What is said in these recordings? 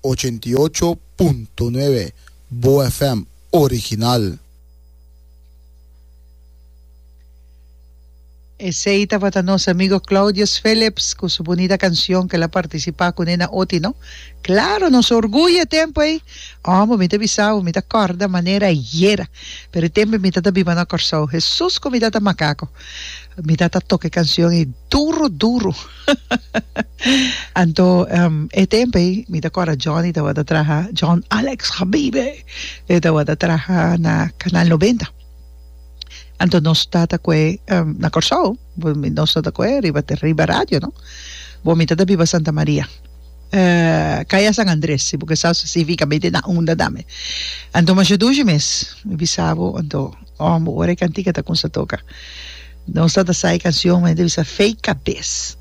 Ochenta i ocho punto nuebe Bo FM original. Esey tabata nos amigo Claudius Philips cu su bunita cancion cu el a participa cune na oti no. Claro, nos orguyo e tempo ey. Omo, mi ta bisabo, mi ta corda manera ayera. Pero e tempo ey mi tata biba na Corsou. Hesus cu mi tata macaco. Mi tata toca e cancion ey duro, duro. Anto e tempo ei mi ta kòrda Johnny tabata traha John Alex Habibe e tabata traha na Kanal Nobenta anto nos tata kue na Kòrsou nos tata kue riba te riba radio no bo mi tata biba Santa Maria kaya San Andres si bo ke sa sifika mete na unda tambe anto masha dushi mes mi bisa bo anto ora e kantika ta kumsa toka Nos ta ta sa e cancion men e ta bisa fake cabes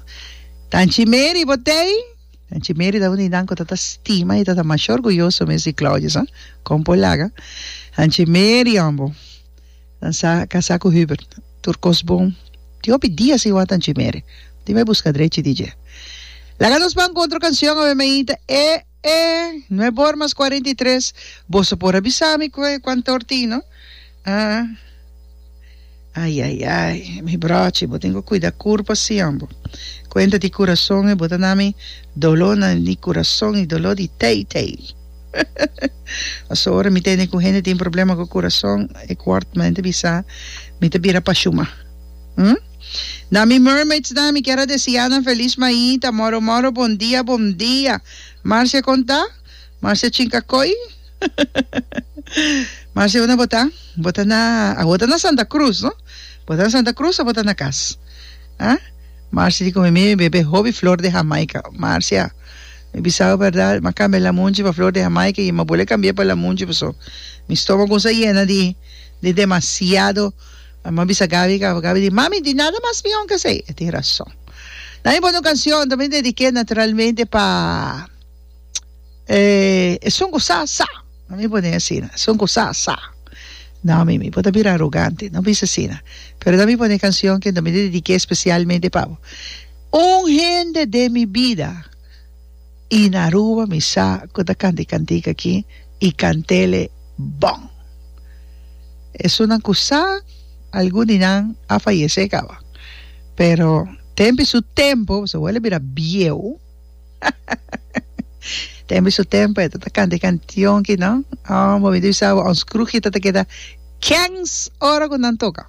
tanchi meri bo tey tanchi meri ta un di nan cu ta ta stima y ta ta masha orguyoso mes di Claudio sa con por laga tanchi meri ambo nan sa casa cu Hubert tur cos bon tin hopi dia sin wak tanchi meri dime busca drechi dje laga nos ban cu otro cancion awe meita e E no e bor mas cuarenta y tres. Boso por a bisa mi cu e cuantor tin no? Ah. Ay ay ay mi brochi bo tin cu cuida curpa sion bo cuenta di curason e bo ta nami dolo na di curason y dolo di tey tey pasobra mi tende cu hende tin problema cu curason e cuart mende bisa mi ta bira pa shuma hm. Na mi mermaids nan mi kier a desia nan felis maita moro moro bon dia bon dia Marcia kon ta? Marcia chinka koi? Marcia una bo ta? Bo ta na awo ta na Santa Cruz no? Bo ta na Santa Cruz a bo ta na kas? Ha? Marcia di kome mi mi bebe hopi flor de Jamaica Marcia mi bisabo berdad ma kambia lamunchi pa flor de Jamaica y ma bole kambia pa lamunchi paso mi stomago sa yena di di demasiado Mamá a bisa Gaby, Gaby di, Mami, di nada mas mi honger sa e. E tin rason. Nan e pone un cancion, ta bin dedique naturalmente pa Esun cu sa sa. No mi pone asina, Esun cu sa sa. No, mi, mi por ta bira arrogante, no bisa asina. Pero nan mi pone e cancion cu ta bin dedique especialmente pa bo. Un hende den mi bida. Y na Aruba mi sa cu ta canti cantica aki y cantele bon. Esunnan cu sa algun di nan a fayece caba. Pero tempi su tempo boso wele bira bieu tempi su tempo e ta ta canti cantion ki no oh bo mi ta bisa bo ons cruji ta ta keda kens ora cu nan toca.